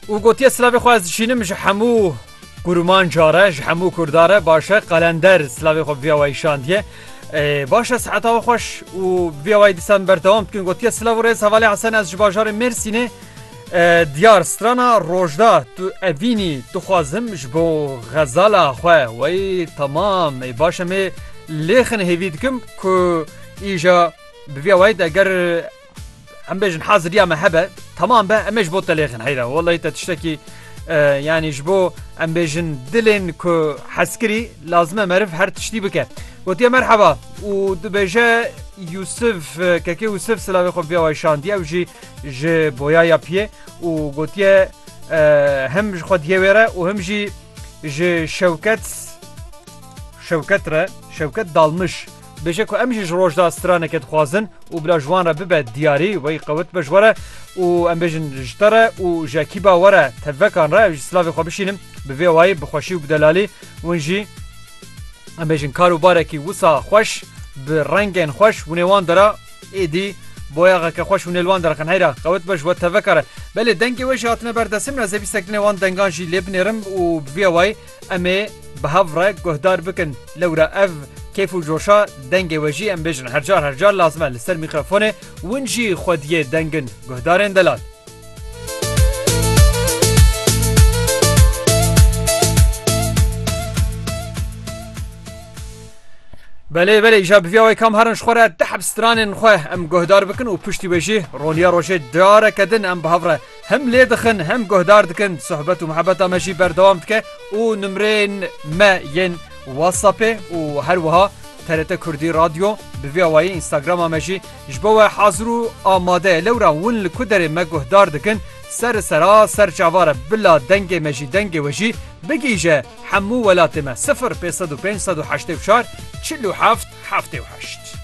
û gotiye silavê xwe ez dişînim ji hemû kurûman care ji hemû kurdare başe qalender silavê xwe viya wayî şandiye başe seheta we xweş û viya wayî dîsan berdewam dikin gotiye silav rêz hevalê hesen ez ji bajarê mêrsînê diyar strana rojda tu evînî dixwazim ji bo xezala xwe wey temam ê başe mê lêxin hêvî dikim ku îja bi viya wayî eger Em bêjin haziriya me hebe tamam be em ê ji bo telêxin heyra wellahî te tiştekî yanî ji bo em bêjin dilên ku heskirî lazime meriv her tiştî bike. Gotiye merheba û dibêje Yusuf kekê Yusuf silavê xwe biya way şandiye ew jî ji boyaya piye û gotiye hem ji xwe diye wêre û hem jî ji şewket şewket re şewket dalmiş. Dibêje ku em jî ji roj da straneke dixwazin û bila ji wan re bibe diyarî wey qewit be ji we re û em bêjin ji te re û ji ekîba we re tevvekan re ew jî silavê xwe bişînim bi vê wayî bi xweşî û bi delalî hûn jî em bêjin kar û barekî wisa xweş bi rengên xweş hûnê wan dera êdî boyaxeke xweş hûnê li wan derxin heyra qewit be ji we tevvekare belê dengê we jî hatine ber destin me zevîstek dinê wan dengan jî lê binêrim û bi vê wayî Em ê bi hev re guhdar bikin lewra ev kêf û coşa dengê we jî em bêjin her car her car lazim e li ser mîkrofonê win jî xwediyê deng in guhdarên delal. Belê belê îja bi vîya wê kam herin ji xwe re dihebstranên xwe em guhdar bikin û piştî wê jî roniya rojê careke din em bi hev re Hem lê dixin hem guhdar dikin sohbet û mihebeta me jî berdewam dike û nimreyên me yên Whatsappê û her wiha TRT Kurdî Radyo bi vî awayî Instagrama me jî ji bo we hazir û amade ye. Lewra win li ku derê me guhdar dikin ser sera ser çavar e bila dengê me jî dengê we jî bigihîje hemû welatê me sifir pêz sed û pênc sed û heştê û çar çil û heft heftê û heşt.